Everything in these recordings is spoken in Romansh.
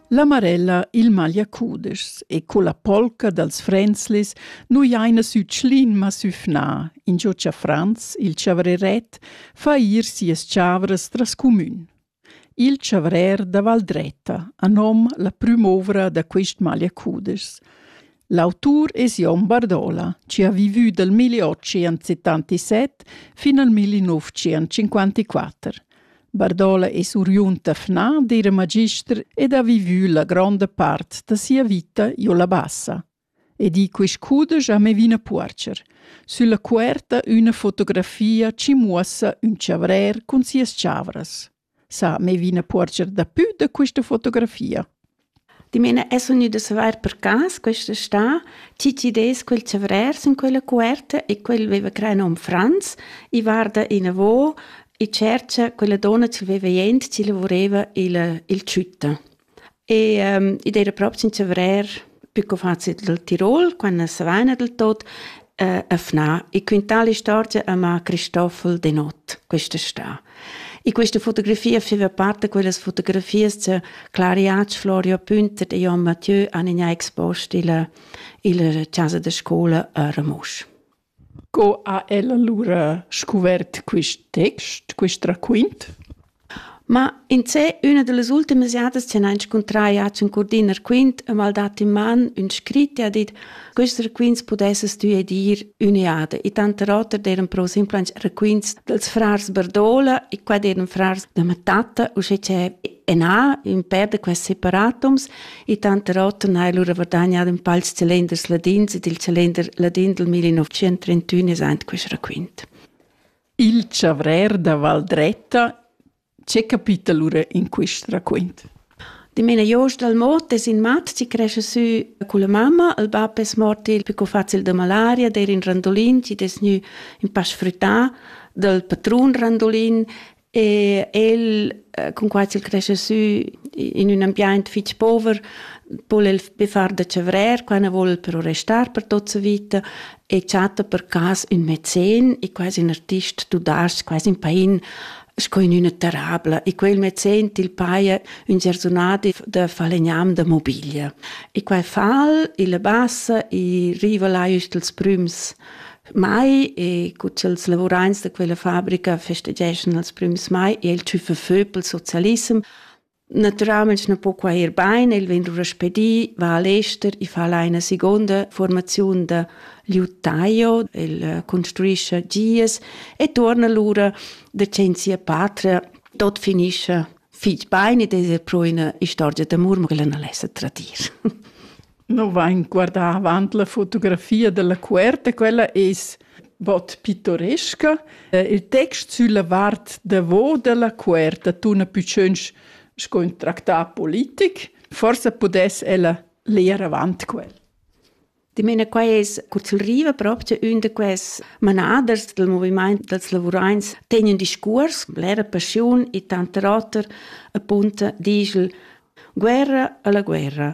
La Marella il magliacudeschs e co la polca dals Fränzlis nu jaina sü Tschlin ma sü Fna, ingio cha Franz, il chavreret, fa ir sias chavras tras cumün. Il chavrer da Valdretta ha nom la prüm'ouvra da quist magliacudeschs. L'autur es Jon Bardola, chi ha vivü dal 1877 fin al 1954. Bardola es uriund da Fna d'eira magister ed ha vivü la gronda part da sia vita giò la Bassa. E di quist cudesch a Mevina Puorcher. Sülla cuerta üna fotografia chi muossa ün chavrer cun sias chavras. sa, me vina porscher dapü da quista fotografia. Dimena es gnü da savair per cas questa stà chi chi des quel chavrers in quella cuerta e quel veva crei nom Franz, i varda inavo e tschercha quella donna chi veva jent chi lavureva il, il ciutta. E um, id eira propi in chavrer più co fazi del Tirol, quando se vaina del tot, eh, a FNA e quintà l'istorgia a Cristoffel de Not quest'està. E questa fotografia feva parte quelles fotografies che Clariac, Florio Pünter e Jon Mathieu han in expost il, il casa de scuola a Ramosch. Co ha el alura scuvert quist text, quist raquint? Ma insè üna da las ultimas jadas chi hana inscuntrà jat sün curdin raquint e m'ha'l dat in man ün scrit e ha dit: «Quist raquints pudessast tü edir üna jada.» I tanter oter d'eiran però simplans raquints dals frars Bardola e qua d'eiran frars da ma tatta, uschè cha e na, ün pêr da quels separatums, e tanter oter n'ha el lura verdagnà ün pals celenders ladins ed il celender ladin dal 1931 es aint quist raquint. Il chavrer da Valdretta che capita lura in quist raquint? Dimena Jost dal Mot es in mat chi cresce sü culla mamma. Il bap es mort il più facil da malaria, der in Randolin, chi es gnü in pa sfrüttà dal patrun Randolin E el, eh, cun quai ch'el cresce sü in ün ambiaint fich pover, vol el be far da chavrer, qua ne vol però restar per tot sa vita e chatta per cas ün mecen e quasi un artist tu das quasi in pain sco in üna terrabla e quel mecen til paia ün gersunadi da falegnam da mobiglia. E quai fal, il bassa e riva là üst els prüms Mai e cu els lavurains da quella fabrica festegeschan els prüms mai e il tschüffa fö pel socialissem. Naturalmaing na po quai ir bain, el vegn lura spedì, va al ester e fa là ina seconda formaziun da liuttaio, el construischa gias e torna lura da che in sia patria tot finischa fich bain ed es er pro üna istorgia d'amur, ma quella non l'esa tradir. No vain guardà avant la fotografia della cuerta, quella es bod pittoresca. Il text sülla vart davo della cuerta tuna pü tschönch sco ün tractà politic. Forsa pudess ella leer avant quel. Ich meine, qua es kurz riva proprio un de quels manaders del moviment dels lavurains ten un discurs, l'era passion e tanta roter, appunto, dice guerra alla guerra.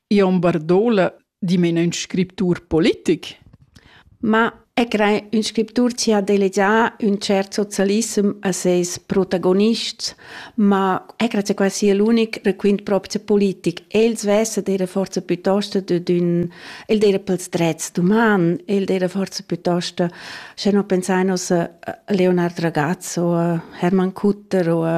Jon Bardola dimena ün scriptur politic? Ma e crei ün scriptur chi ha delegià ün tschert socialissem a seis protagonists, ma e grazia quasi è l'unic requint propcha politic. El svessa d'eira forsa pütost dad ün... El d'eira pels drets d'uman, el d'eira forsa pütost, sche non pensain uss a Leonard Ragazzo, a Hermann Kutter o a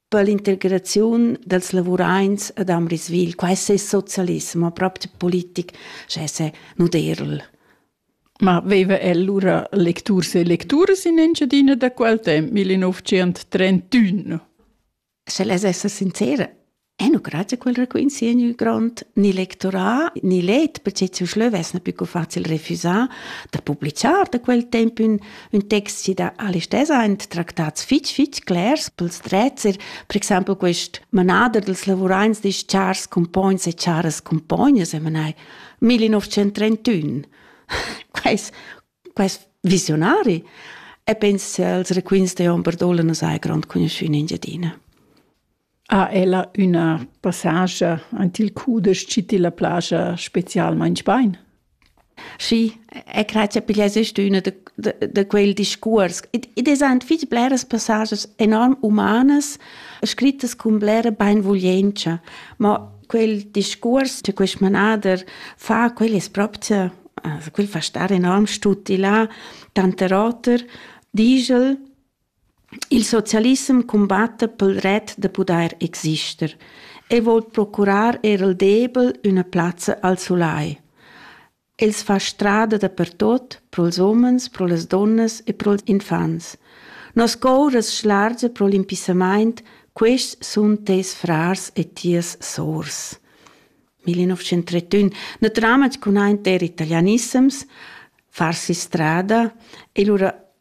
per l'integraziun dels lavuraints ad Amriswil. Qua es es socialismo, proprio politic, sche se nuderl. Ma veva el lura lecturs e lecturas in Engiadina da quel temp, 1931? Se les essa sincera, E nu grazie quel raquint si in grond ni lectorat ni let, perché ci schleu vess na più facil refusar da publicar da quel temp ün Ün text chi dà all'istessa aint tractats fich fich clers pels drezzer, per exaimpel quist manader dels lavuraints disch chars cumpogns e charas cumpognas e manai 1931. Quais quais visionari e pensa als requints de hom Bardola nos hai grond cugnuschü in Engiadina. ha ella üna passascha ant il cudesch chi tilla plascha specialmaing bain. Schi, e cret cha piglia sest üna da, da, da quel discuors. Id es ant fich bleras passasas enorm umanas, scrittas cun blera bainvuglientscha, ma quel discuors cha quist manader fa, quel es propcha, quel fa star enorm stuti là, tanter oter, digl Il socialissem cumbatta pel ret da pudair exister e voul procurar eir al debel üna plazza al sulai. Els fa strada dapertot, pro'ls umens, pro las dunnas e pro'ls infants. Nos cour as schlargia pro l'impissamaint, quists sun teis frars e tias sours. 1931. Natüralmaing cun aint der italianissems, farsi strada e lura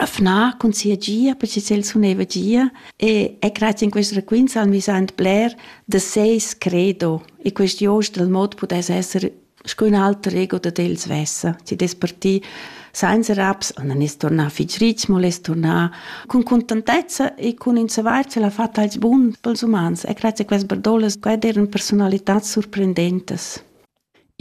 Afna cun sia gia perche ch'el suneva gia e e grazia in quest raquints han vis aint bler da seis credo e quest jost dal mod pudess esser sco ün alter ego dad el svessa. Chi'd es partì sainza raps, nan es tornà fich rich, mo l'es turnà cun cuntantezza e cun ün savair ch'el ha fat als bun pels umans e grazia a quest bardolas, quai d'eiran persunalitats surprendentas.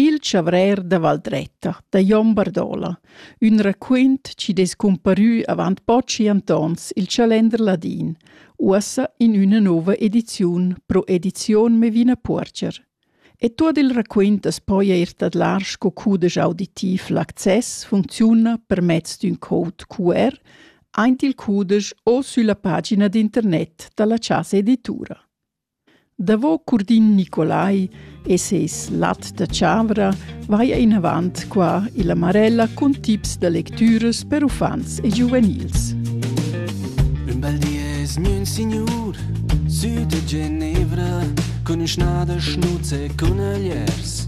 Il chavrer da Valdretta da Jon Bardola, ün raquint chi dess cumparü avant pochi antons i'l Chalender ladin, uossa in üna nouva ediziun pro edizion Mevina Puorger. E tuot il raquint as poja eir tadlar sco cudesch auditiv. L'access funcziuna per mezz d'ün code QR aint il cudesch o sülla pagina d'internet da la Chasa Editura. Davo Curdin Nicolai e seis lat da chavra vaja inavant qua illa Marella cun tips da lectüras per uffants e giuvenils. Ün bel di es gnü ün signur sü da Genevra cun ün schnà da schnuz e cun ögliers.